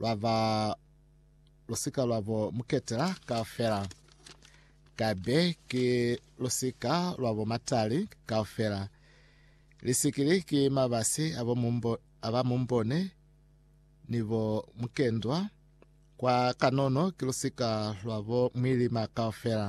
lwa ba lu si ka lwa bo mu ketela kaufela, ka be ki lu si ka lwa bo matali kaufela, lisikili ki mabasi a bo mumbo, a ba mumbone ni bo mukendwa, kwa kanono ki lu si ka lwa bo mwilima kaufela.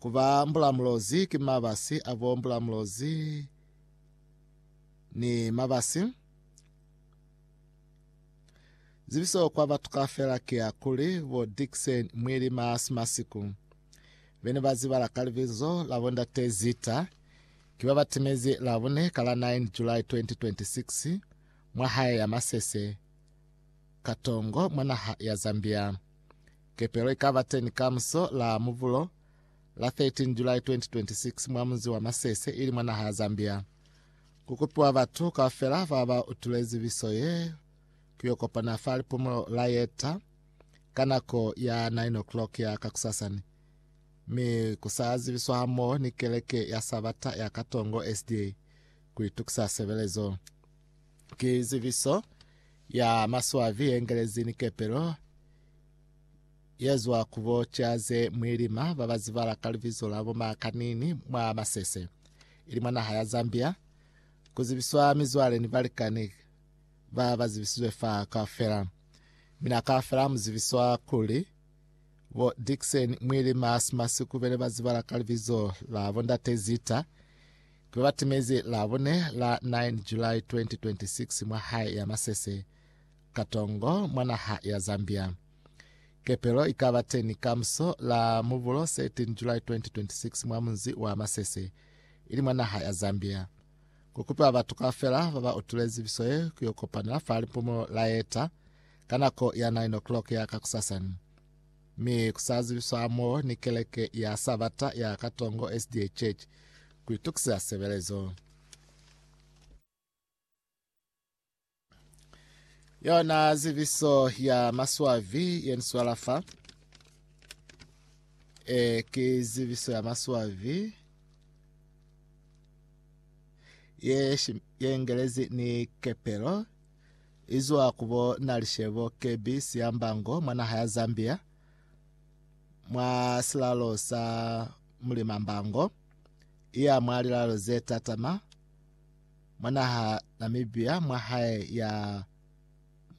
Ku ba mbulamulozi ki mabasi a bo mbulamulozi ni mabasi. Zibiso kwa batu kaufela ki ya kuli bo Dickson Mwili Maasi Masiku be ne ba zibala ka libizo la bo Ndate Zita ki ba ba timezi Labune ka la 9 July 2026 mwa hae ya masese Katongo mwa naha ya Zambia. Kepelo ikaba teni kamuso la Mubulo la 13 July 2026 mwa munzi wa Masese ili mwa naha ya Zambia. Kukupiwa batu kaufela baba utule zibiso ye kuyo kopana fa lipumulo la yeta ka nako ya 9:00 ya kakusasani, mi kusa zibiswa hamoho ni keleke ya Sabata ya Katongo SDA kuitukisa sebelezo. Ki zibiso ya maswabi ye ngelezi ni kepelo ye zwa ku bo ca ze mwilima ba ba zibala ka libizo la bo Makanini mwa Masese, ili mwa naha ya Zambia. Ku zibiswa mizwale ni balikani ba ba zibisizwe fa kaufela. Mina kaufela mu zibiswa kuli bo Dickson Mwilima Smasikubele ba zibala ka libizo la bo Ndate Zita. Ki batimezi la bune la 9 July 2026 mwa hae ya Masese, Katongo, mwa naha ya Zambia. Kepelo ikaba teni kamuso la Mubulo 13 July 2026 mwa munzi wa Masese, ili mwa naha ya Zambia. Kukupiwa batu kaufela baba utulezi biso ye kuyo kopanela fa lipumulo la eta ka nako ya 9 o'clock ya kakusasani. Mi ku sa zibiswa hamo ni keleke ya Sabata ya Katongo SDA Church ku itukiseza sebelezo. Yona zibiso ya maswavi ye ni swala fa e ki zibiso ya maswavi ye, shi, ye ngelezi ni kepelo izwa ku bo Nalishebo Kebby Siyambango mwa naha ya Zambia mwa silalo sa Mulima Mbango iya mwa lilalo ze tatama mwa naha Namibia mwa hae ya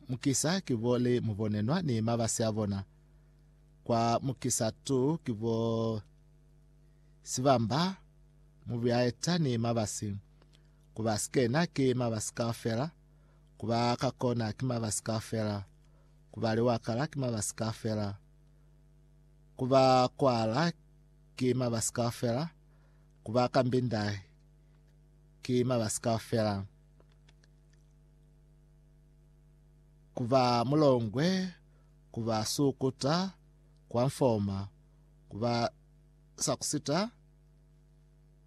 mukisa kibo le mubonenwa ni mabasi a bona kwa mukisa tu kibo sibamba mubiaeta ni mabasi Ku ba sikena ki mabasi kaufela, ku ba ka kona ki mabasi kaufela, ku ba liwakala ki mabasi kaufela, ku ba kwala ki mabasi kaufela, ku ba ka mbinda ki mabasi kaufela, ku ba mulongwe, ku ba sukuta, kwa mfoma, ku ba sakusita,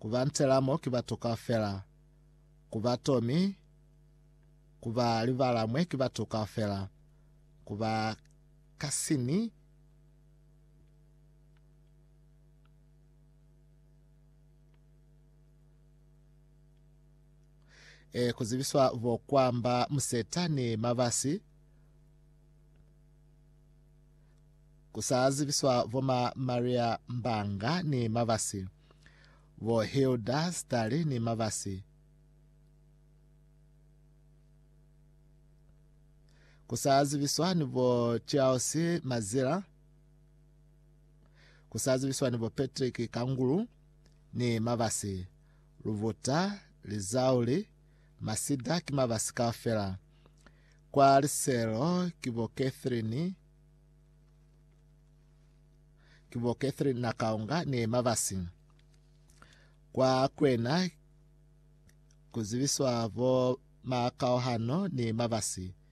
ku ba ntela mo ki batu kaufela, ku ba to mi ku ba libala mwe ki batu kaufela, ku ba ka sini e ku zibiswa bo kwamba museta ni mabasi Ku sa zibiswa bo ma Maria Mbanga ni Mabasi, bo Hilda Stali ni Mabasi, ku sa zibiswa ni bo Charles Mazila, ku sa zibiswa ni bo Patrick Kangulu ni Mabasi, Lubuta, Lizauli, Masida ki Mabasi kaufela. Kwa liselo ki bo Catherine, ki bo Catherine na Kaunga ne Mavasi. Kwa kwena ku zibiswa bo Makauhano ne Mavasi